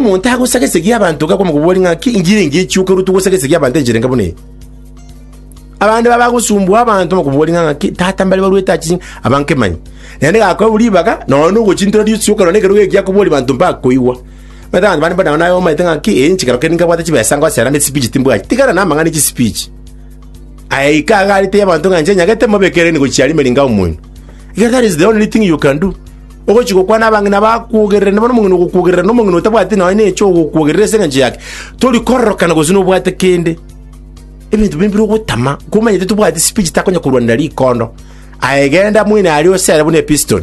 Omonto agosaga esegi y'abanto iga akwama kobua ring'ana ki ingira engiya echioka ruto gosaga esegi y'abanto enchera enga buna eye? Abande baba bagosumbua abanto bakobua ring'ana ki tata mbare baruete achi abanke manye. Naende gakoewa ribaga nonya nogochintera risioka nonya nekerogo ekiya kobori banto mbakoigwa. Omanyete abanto bande mbona naye omaete ng'a ki enche kero kende nkabwate chibesa ngosera ande speech timbwati. Tigana na amang'ana chi speech. Aya ika agarete y'abanto ng'a inche nyagete mobekereni gochia rimeri ngao moino. Iga that is the only thing you can do. Ogochia gokwana abang'ina bakwogererania, bono omong'ina ogokwogerera na omong'ina otabwati nonya neche ogokwogerera ase engencho yake, tori kororokana gose nobwate kende. Ebinto bire mbire ogotama, komanyete tobwati speech takonya korwanera rikondo. Aye genda moino aria osere buna episton.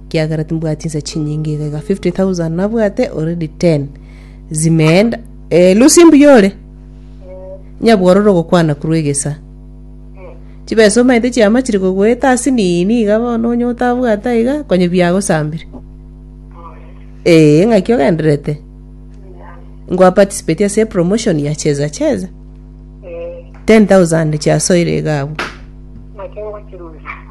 ekiagera timbwati chinsa chinyinge iga iga 50000 nabwate already 10 zimeenda eh, lusi mbuya ore nyabwororo ogokwana korwa egesa chibesa omanyete chiama chiri kogoeta ase nini iga bono onye otabwata iga konye biagosambire ee ng'aki ogenderete ngwa participate ase promotion ya cheza cheza 10000 chiasoire iga abwo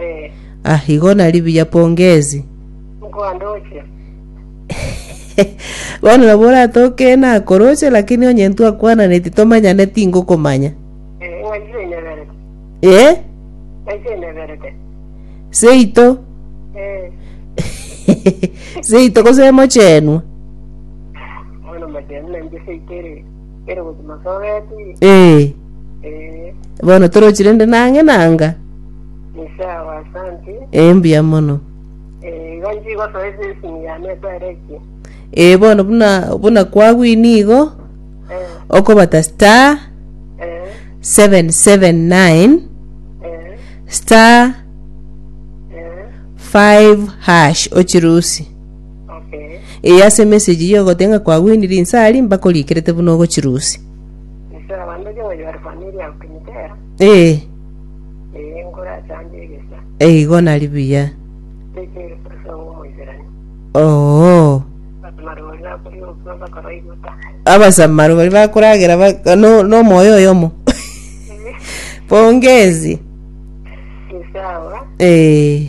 Eh, Ah, igo nari buya pongezi. nkoandoche. Bono nabo oratoke nakoroche lakini onye ntwakwananeti tomanyane tingokomanya. Eh, ng'aitire nyeberete. Eh? Ng'aitire nyeberete. Seito. Eh, Seito gose mochenwa. bono machenu nainche seitere. Ere gochi masogeti. Ee, Eh, bono torochi rende nang'e nanga. Misia wa Santi. Ee, mbuya mono. Eh, igo nchi gosoa esesini ya mesa ere ki. Ee, bono buna, buna kwagwini igo, Eh, okobata star eh, 779 eh, star eh. 5 hash ochirusi. Ee, ase emesegi y'ogotenga kwagwenirie inse aria mbakoriikerete buna ogochirusia. Ee, eigo nari buya. Oo. Abasamaro baria bakoragera ba- no- nomoyo oyomo. Pongezi. Ee.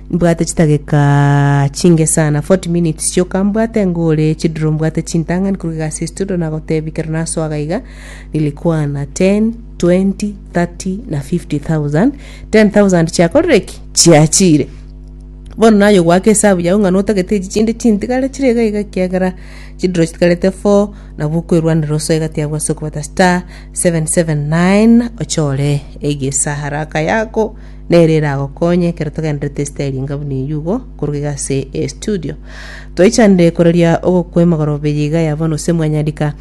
Mbwate chidageka chinge sana, 40 minutes chioka, mbwate ng'a ore chiduro, mbwate chintang'ani korwa egasi estudo nagotebia kero nasoa gaiga nilikwana 10, 20, 30 na 50,000. 10,000 chiakorire ki? Chiachire. Bono naye ogwaka esabu yao ng'a notagete echi chinde chintigare chire iga iga ekiagera chiduro chitigarete 4 nabo okoerwanera osoe egati abwo ase okobeta star 779 ochore egesahara aka yako Nere eragokonye ekero togenderete esita eri enga buna eyio igo korwa iga ase estudio. Twaichanire koreria ogokwa emogorobe eye iga ya bono ase Mwanyandika,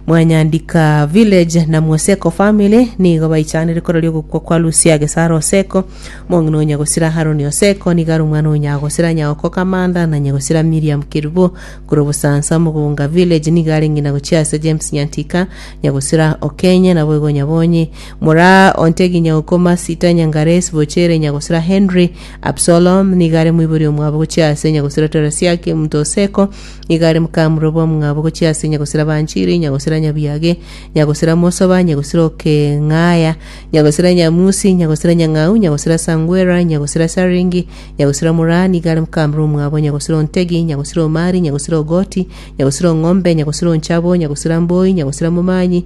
Mwanyandika Village na Mwoseko Family nigo baichanire koreria ogokwa kwa Lucia Gesara Oseko, omong'ina o Nyagosira Haroni Oseko nigo are omwana o Nyagosira Nyaoko Kamanda na Nyagosira Miriam Kerubo korwa Bosansa Mugunga Village nigo are ng'ina gochia ase James Nyantika, Nyagosira Okenye naboigo Nyabonyi Mora ontegi nyagokoma Asita Nyangares bochere nyagosira Henry Absalom nigo are moibori omwabo gochia ase nyagosira Teresiake omonto o Seko nigo are mokamura bwa omwabo gochia ase nyagosira Banchiri nyagosira Nyabiage nyagosira Mosoba nyagosira Okeng'aya nyagosira Nyamusi nyagosira Nyang'au nyagosira Sangwera nyagosira Saringi nyagosira Mora nigo are mokamura omwabo nyagosira Ontegi nyagosira Omari nyagosira Ogoti nyagosira Ong'ombe nyagosira Onchabo nyagosira Mboi nyagosira Momanyi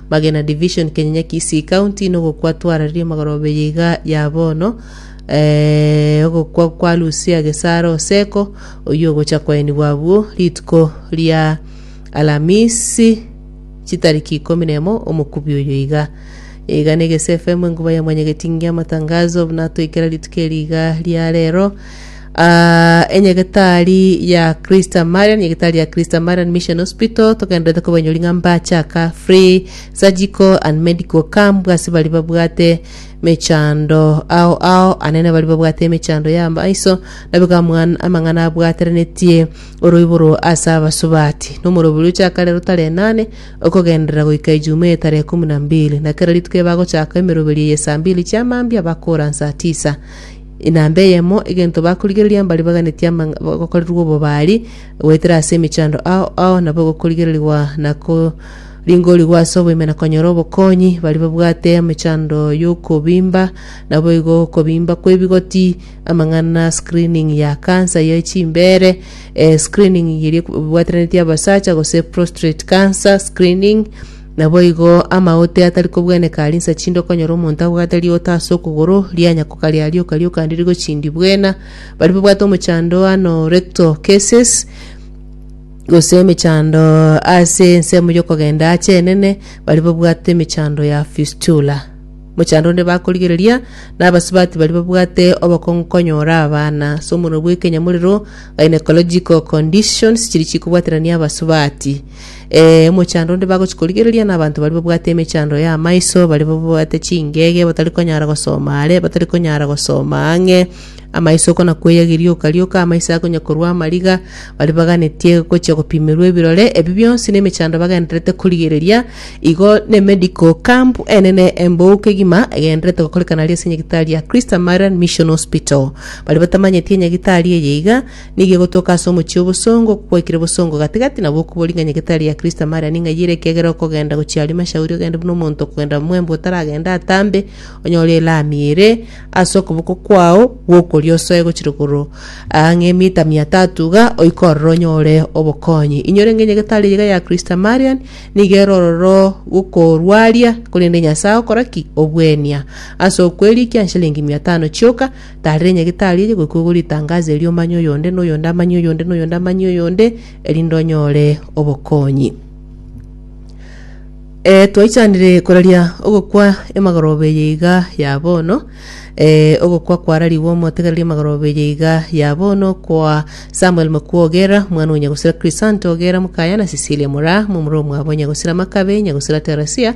Magena Division, Kenyenya Kisii County, nogokwa twarareria magorobe yaiga ya bono, eh, ogokwa kwa Lucia Gesara Oseko, oyio ogocha kwaenigwa abwo rituko ria Alamisi chitariki ikomi na emo omokubi oyo iga iga na Egese FM enkuba ya mwanyagetingi amatangazo buna toikera rituko eri iga ria rero Aa, enyegetari ya Christa Marian, enyegetari ya Christa Marian Mission Hospital togenderete kobanyori ng'a mbachaka free surgical and medical camp ase bari babwate mechando ao ao anene bari babwate emechando ya maiso nabiga amwan- amang'ana abwaterenetie oroiboro ase abasubati nomorobori ochaka rero tarehe nane okogenderera goika ejuma eye tarehe kumi na mbili na kera rituko eye bagochaka emeroberi eye saa mbili chia mambia bakora nsaa tisa Inamba eyemo, egento bakorigereria mbare baganetie amang'a gokorerwa obobari, goetera ase emechando ao ao nabo egokorigererigwa na koringorigwa ase oboime na konyora obokonyi. Baria babwate emechando y'okobimba nabo igo okobimba kw'ebigoti, amang'ana, screening ya cancer ye chimbeere, eh, screening eria ebwateranetie abasacha gose prostrate cancer screening, Naboigo amaote atari kobweneka aria insa chinde okonyora omonto abwate riota ase okogoro, rianyakoka riarioka rioka ndiri gochindi bwena. Baria babwate omochando ano rectal cases, gose emechando ase ensemo y'okogenda aache enene, baria babwate emechando ya fistula. Mochando onde bakorigereria nabasubati baria babwate obokong'u konyora abana ase omorero bw'ekenyamorero, gynecological conditions, chiria chikobwaterania abasubati. Eh, omochando onde bagochi korigereria n'abanto baria babwate emechando ya amaiso, baria babwate chingege, batari konyara gosoma are, batari konyara gosoma ang'e, amaiso kona kweya gerioka rioka, amaiso akonya korwa amariga, baria baganetie gochia gopimerwa ebirore, ebi bionsi nemechando bagendererete korigereria, igo ne medical camp enene embou kegima egendererete gokorekana aria ase enyagitari ya Christ Marian Mission Hospital. Baria batamanyeti enyagitari eye iga, Nigo egotoka ase omochie obosongo, okogwaikire bosongo gati-gati, nabo okoba ori ng'a nyegete aria ya Kristo amare aning'ayi ere, ekiagera okogenda gochia aria mashauri ogende buna omonto okogenda mwembe otaragende atambe, onyore elami ere ase okoboko kwao gw'okorio osoe gochia rogoro aa ng'emita mia tatu iga, oike ororo onyore obokonyi. Inyore ng'enyegete aria iga ya Kristo Marian, nigo ere ororo gokorwaria, korende Nyasae ogokora ki? Obuenia. Ase okwerikia nshilingi mia tano chioka, Taarera enyagetari eye goika ogo ritangaso erio omanye oyonde, na oyonde amanye oyonde, na oyonde amanye oyonde, erinde onyore obokonyi. Eh, twaichanire koraria ogokwa emagoroba eye iga ya bono eh, ogokwa kwararigwe omotegereri emagoroba eye iga ya bono kwa Samuel Makua Ogera, mwana o Nyagosira Crisanta Ogera, mokaya na Cecilia Mora, momura omwabo Nyagosira Makabe, Nyagosira Teresia,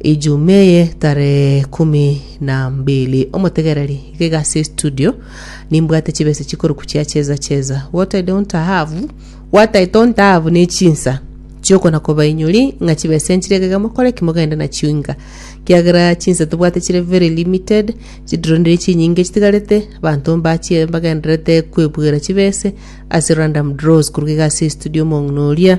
Ijuma eye tarehe ekumi na mbili omotegereri iga iga ase estudio nimbwate chibesa chikoruku chia cheza cheza what I don't have what I don't have ne chinsa chiokona kobainyori ng'a chibesa enchire iga iga mokore ki mogende nachio inga kiagera chinsa tobwate chire very limited chidironire chinyinge chitigarete abanto mbachie mbagendererete kwebwera chibese ase random draws koruga iga ase estudio omong'ina oria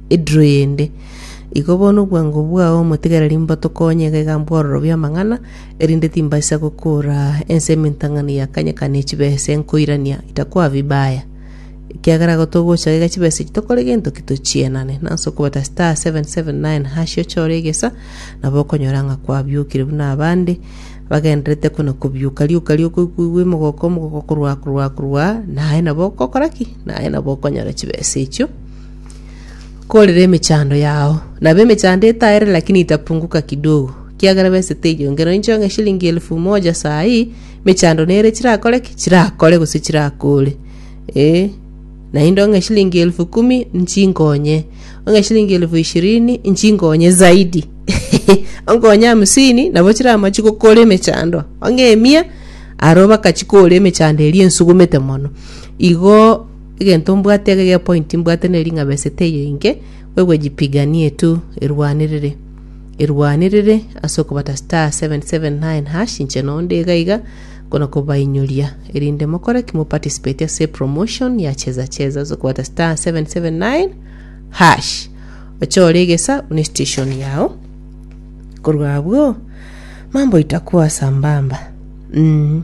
Ediro yende. Igo bono obwango bwao omotigereri mbotokonye iga iga mbwororobie amang'ana, erinde timbaisa gokora ense emintang'ani ya kanya kane echibese nkoirania itakoa vibaya. Ekiagera igo togocha iga chibese echi tokore gento ki tochienane. Nase okobeta star seven seven nine hash ochore egesa, nabo okonyora ng'a kwabiokire buna abande bagendererete kona kobiuka. Rioka rioka okoigwa emogoko omogoko korwa korwa korwa, naye nabo ogokora ki? Naye nabo okonyora chibese echio. Korire emechando yao. Nabo emechando etaere lakini itapunguka kidogo. Kiagera besete enyongera. Nincho ng'a eshilingi elfu moja saa hii, emechando nere chirakore ki? Chirakore gose chirakore. Ee. Naende ong'e eshilingi elfu kumi, nchinkonye. Ong'e eshilingi elfu ishirini, nchinkonye zaidi. Onkonye hamsini, nabo chiramachi gokora emechando. Ong'e emia, aro bakachikora emechando eria ensugumete mono. Igo Egento mbwate ege ge point mbwate neri ng'a besete eye inke kwegwejipiganie tu erwanirire erwanirire ase okobata star 779 hash inche no nde iga iga nkona kobainyoria erinde mokore ki mo participate ase promotion ya cheza cheza ase okobata star 779 hash ochore egesa one station yao korwa abwo mambo itakuwa sambamba mm.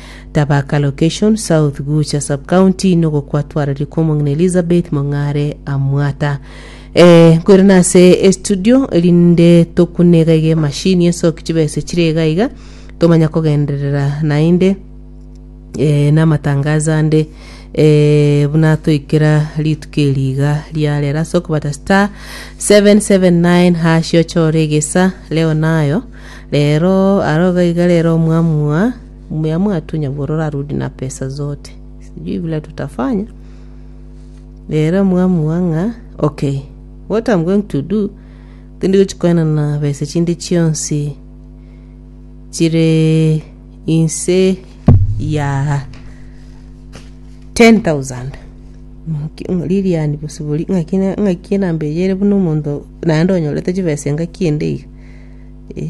Thabaka location, South Gucha sub-county, Nogo kwatwareri kwa omong'ina Elizabeth Mong'are Amwata. Eh, nkoire nase estudio erinde tokune iga iga emashini ensoki chibesa echire iga iga tomanya kogenderera naende eh, namatangazo ande eh, buna toikera rituko eri iga riarera ase okobata star 779 hash ochore egesa leo nayo rero aroga iga rero mwamua Mumeamua tu nyabororo arudi na pesa zote. Sijui vile tutafanya. Rero muamua ng'a okay, what I'm going to do tindi gochikoena na besa chinde chionsi chire inse ya 10,000 liliani bosibori ng'aki na- ng'aki enamba eye ere buna omonto naende onyorete chibesa engaki ende iga eh.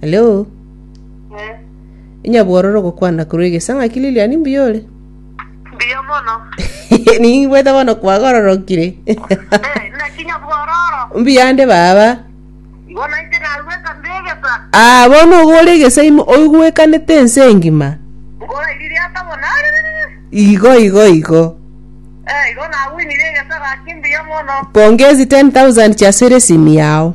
Hello. Eh, Inyabwororo gokwana korwa egesa ng'aki Lilian mbuya ore. mbuya mono. Ningwete bono kwagororokire. Eh, naki nyabwororo. mbuya nde baba. Igo naite nagweka mbegesa. Ah, bono ogore egesa imo oigwekanete ense engima. Ngora iriri ata bono. Igo igo igo. Eh, igo nawinire egesa gaki mbuya mono. Pongezi 10,000 chia sere simi yao.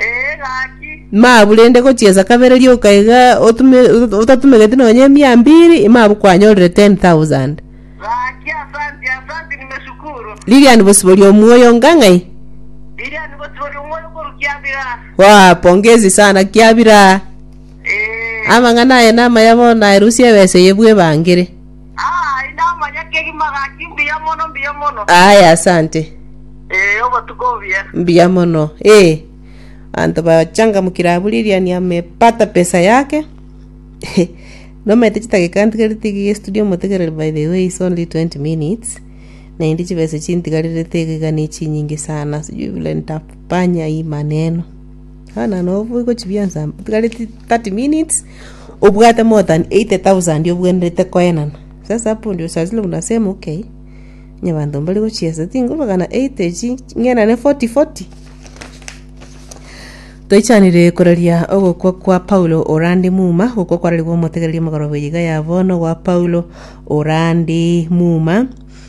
Ee, gaki. Mabu rende gochiesa kabere rioka iga otume ot- otatumegeti nonye emia mbiri, imabu kwanyorire 10,000. Gaki, asanti, asanti, nimeshukuru. Lilian bosibori omuoyo onga ng'ai? Lilian bosibori omuoyo korwa Kiabira. Waa, pongezi sana Kiabira. Ee. Amang'ana aye namaya bono aerusia ebesa eye bwebangire. Aye namanya kegima gaki mbuya mono mbuya mono. Aye asante. Eh obotuko obuya. Mbuya mono. Eh. Anto bachangamukire abwo Lilian amepata pesa yake. Nomete chitageka ntigarete iga studio motegerere by the way it's only 20 minutes. Naende chibesa chintigarerete iga iga nechinyinge sana sijui vile nitafanya hii maneno. Buna nabwo igo chibionsi amo otigareti 30 minutes obwate more than 80,000 obwenerete koenana. Sasa hapo ndio saa zile unasema okay onye abanto mbare gochiesa tinguru magana 80 echi ng'enane 40 40. Toichanire koraria ogokwa kwa Paulo orande muma, ogokwa kwararigwe omotegereria omogoroba iga ya bono gwa Paulo orande muma.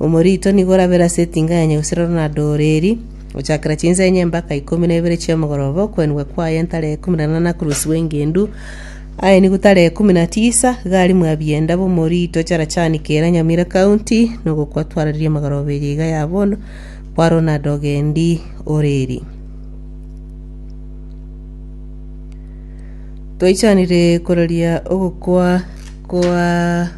Omorito nigo orabere ase etinga yenye gose roro na dooro eri, gochakera chinsa enye mpaka ikomi na ibere chi'omogoroba, okwenigwa kwaye ntare ikomi na nana koruswa engendu, aenigwe tare ikomi na tisa, iga arimwe abienda b'omorito charachani kera Nyamira County, na ogokwa twararie amagoroba eye iga ya bono kwa Ronald Ogendi Oreri. Toichanire kororia ogokwa kwa.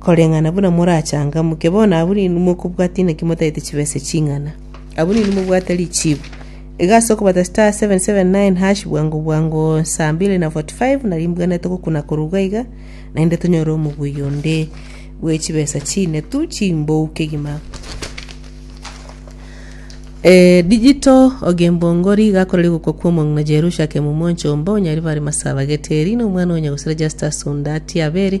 Koreng'ana buna morachangamuke bono, abwo ninwe mokobwata inaki motagete chibesa ching'ana. Abwo ninwe mobwate richiibu. Iga ase okobata *779# bwango bwango saa mbili na 45 narimbwenerete gokuna korwa iga iga, naende tonyore omoguya onde bwe chibesa chinetu chimbou kegima. Eh, digital ogembongori iga akoreri gokwa kwa omong'ina Jerusha akemumwa onchomba onyaribare masabageteri na omwana onya gosira Justus onde atie abere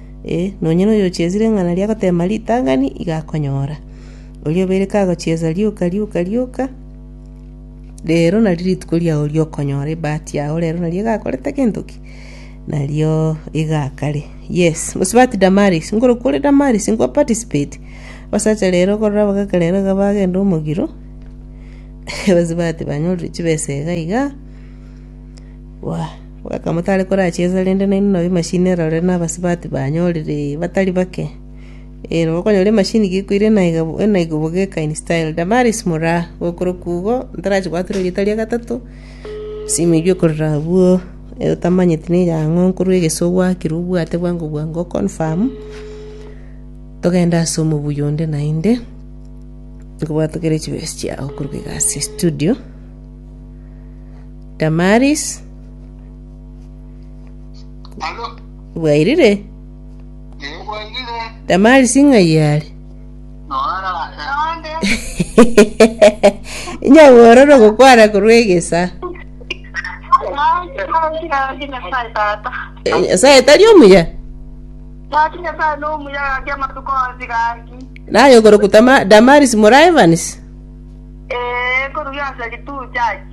Ee, nonya noyochiesire ring'ana ria goteema ritang'ani iga akonyora. Oria obeire kagochiesa rioka rioka rioka, rero nario rituko riao ri'okonyora ebahati yao rero nario egakorete gento ki? Nario egakare. Yes, mosubati Damaris, nkorokwo ore Damaris, nko participate. Abasacha rero korora abagaka rero iga bagenda omogiro, abasubati banyorire chibesa iga iga, waah. Bweka motare korachiesa, rende nainwe nabo emashini erore nabasibati banyorire batari bake. Ee, nabo okonyora emashini gekoire enaiga enaiga bogeka in style. Damaris moraa, gokorokwa igo, ntarachibwatire erieta ria gatato, simu eywo ekorera abwo, otamanyeti neye ang'o nkorwa egesu ogwakire obwate bwango bwango o confirm, togende ase omobuya onde naende, nkobwatokere chibesa chiago korwa egasi estudio. Damaris Alo, bwairire ebwairire, Damaris ng'ai are noara eande, nyabororo gokwana korwa egesa nakirangi Nyasaye tata. Eh, nyasaye tari omuya Gaki Nyasaye nomuya gaki amatuko onsi gaki. naye okorokutama Damaris mora Evans Ee, korugia ase rituchaki.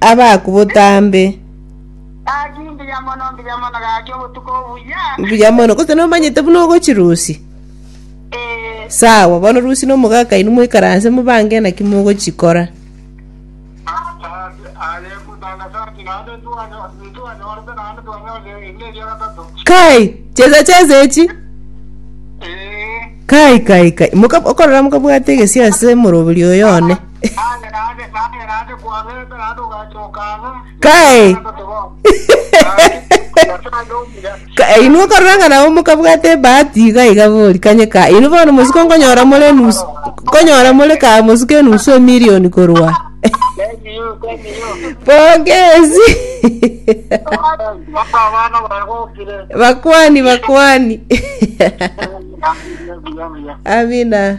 abaku botambe. Mbuya mono gose nomanyete buna ogochi rusi sawa bono rusi na omogaka inwe moikaranse mobange naki mogochikora kai chesa chesa echi kai kai kai Moka- okorora mokabwate egesi ase morobori oyo one Kae. Ka- eh, inwe korora ng'a nabo mokabwata ebahati iga iga bori kanye ka inwe bono mosuko nkonyora more enusu nkonyora more ka mosuko enusu emilioni korwa pongezi bakwani bakwani amina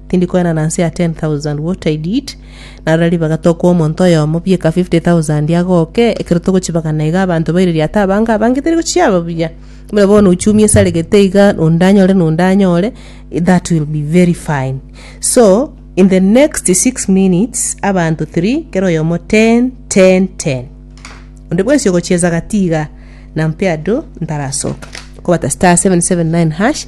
Tindi koena na nse ya 10,000 what I did. Narora ribaga tokwa omonto oyomo bieka 50,000 agoke ekero togochibagana iga abanto baire riata abange abange teri gochiaba buya. Buna bono uchumi esaregete iga onde anyore na onde anyore that will be very fine. So in the next 6 minutes abanto 3 kera oyomo 10 10 10. Onde bwensi ogochieza gati iga nampea do ntarasoka. Kobata star 779 hash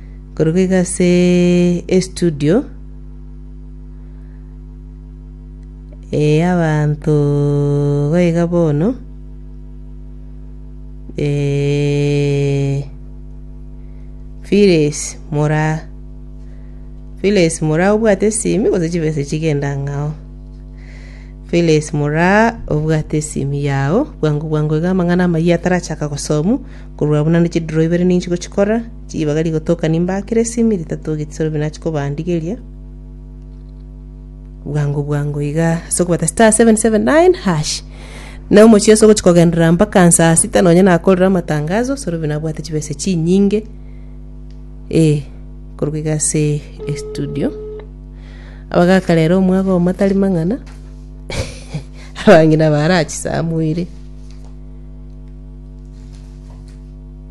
Korwa iga ase estudio eh, y'abanto goiga bono eh, Phyllis Moraa. Phyllis Moraa obwate esimi gose chibesa echi genda ang'e ao. Phyllis Moraa obwate esimi yao, bwango bwango iga amang'ana amayia atarachaka gosomu, korwa abwo naende chidiro ibere ninchi gochikora, Ribaga rigotoka nimbakire esimi ritato getisoro bi nachi kobandigeria bwango bwango iga ase okobata star 779 hash na omochie ase ogochi kogenderera mpaka nsaa sita nonye nakorire amatangazo soro bi nabwate chibesa chinyinge eh korwa iga ase estudio abagaka rero omwaga omo tari mang'ana abang'ina baara chisamoire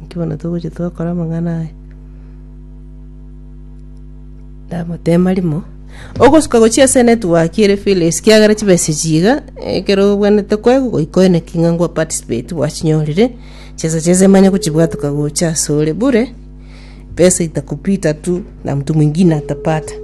Naki bono togocha twakora amang'ana aya. Ndamotema rimo, ogosuka gochia ase enetwork ere Phyllis kiagera chibesa echi iga, ekero obwenerete koegwa goika oeneki ng'a nkwa participate bwachinyorire, chibesa chiaye emanye gochibwatuka gocha ase ore bure, pesa itakupita tu na mtu mwingine atapata.